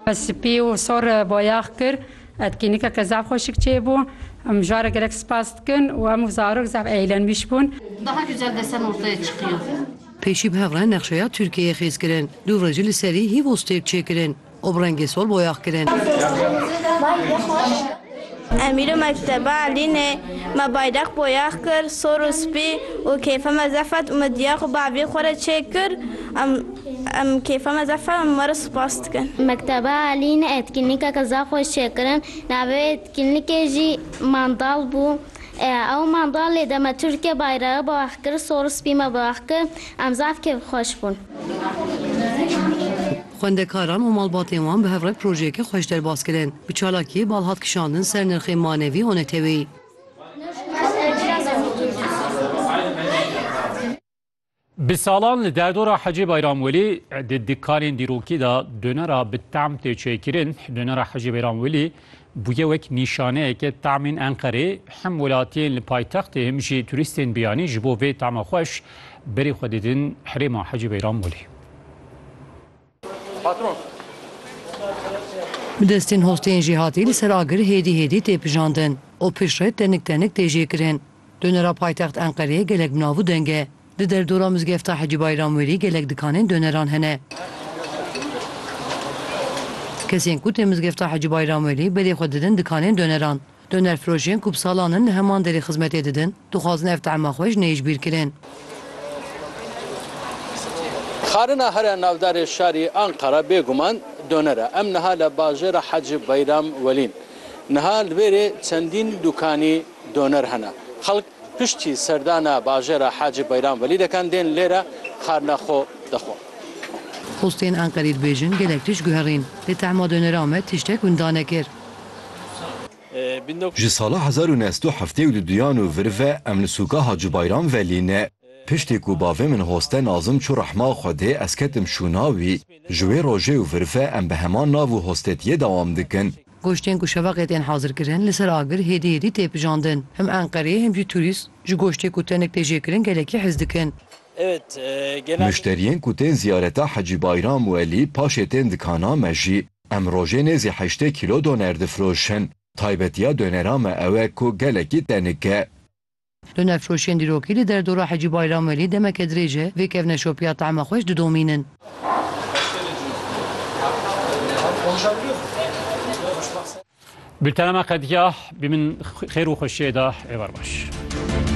Ez spî û sor boyax kir. Etkînîkeke zaf xweşik çêbû. Em jare gelek spas dikin û hemû zarok zaf eîlenbîş bûn. Daha güzel desen ortaya çıkıyor. Pêşî bi hev re nexşeya Tirkiyeyê xêz kirin. Du re jî li serî hîvos têk çêkirin û bi rengê sor boyax kirin. Em îro mekteba Elînê me bayreq boyax kir sor û spî û kêfa me zefet û me diya xwe bavê xwe re çêk kir em em kêfa me zefet em we re spas dikin. Mekteba Elînê etkinlîkeke zaf xweş çêkirin navê wê etkinlîkê jî mandal bû ew mandalê de me Tirkiye bayrağı boyax kir sor û spî me boyax kir em zaf kêfxweş bûn. Xwendekaran û malbatên wan bi hev re projeyeke xweş derbas kirin. Bi çalakiyê bal hat kişandin ser nirxê manevî û neteweyî. Bi salan li derdora Hecê Beyramwelî di dikanên dîrokî de donera bi tam tê çêkirin. Donera Hecê Beyramwelî bûye wek nîşaneyeke tamên Enqerê. Hem welatiyên li paytextê hem jî turîstên biyanî ji bo vê tama xweş berê xwe didin herêma Hecê Beyramwelî. Bi destên hosteyên jêhatî li ser agir hêdî hêdî tê pijandin û piştre tenik tenik tê jêkirin. Donera paytext Enqereyê gelek bi nav û deng e. Di derdora mizgefta Hecî Bayramwêlî gelek dikanên doneran hene. Kesên ku tê mizgefta Hecî Bayramwêlî berê xwe didin dikanên doneran. Donerfirojên ku bi salan in li heman derê xizmetê didin, dixwazin ev teama xwe ji nê yê ji bîr kirin. Xanina her a navdarê şarî Anqara bêguman doner e. Em niha li bajêra Hacî Beyram Welîn. Niha li vêrê çendîn dûkanî doner hene. Xelk Piştî serdana bajêra Hacî Beyram Velî dekan dên lê re xarina xwe dixwin. Xwistên Enqerî dibêjin gelek tişt guherîn, lê Tehma Dönerahmet tiştek winda nekir. Ji sala hezar û neh sed û heftê û du duyan û vir ve em li sûka Hacî Beyram Velî ne. Piştî ku bavê min Hoste Nazim çû rehma Xwedê ez ketim şûna wî. Ji wê rojê û vir ve em bi heman nav û hostetiyê dewam dikin. Goştên ku şevaqê tên hazirkirin li ser agir hêdî hêdî tê pijandin. Him Enqereyê him jî turîst ji goştê ku tenik tê jêkirin gelekî hez dikin. Muşteriyên ku tên ziyareta Hecî Bayram Welî paşê tên dikana me jî em rojê nêzî heştê kîlo doner difiroşin. Taybetiya doneran me ew e ku gelekî tenik e. Du nexweşiyên dîrokî li derdora Hecî Bayram Welî demeke dirêj e vê kevneşopiya tahma xweş didomînin. Bültena me qedîya bi min xêr û xweşiyê da êvar baş.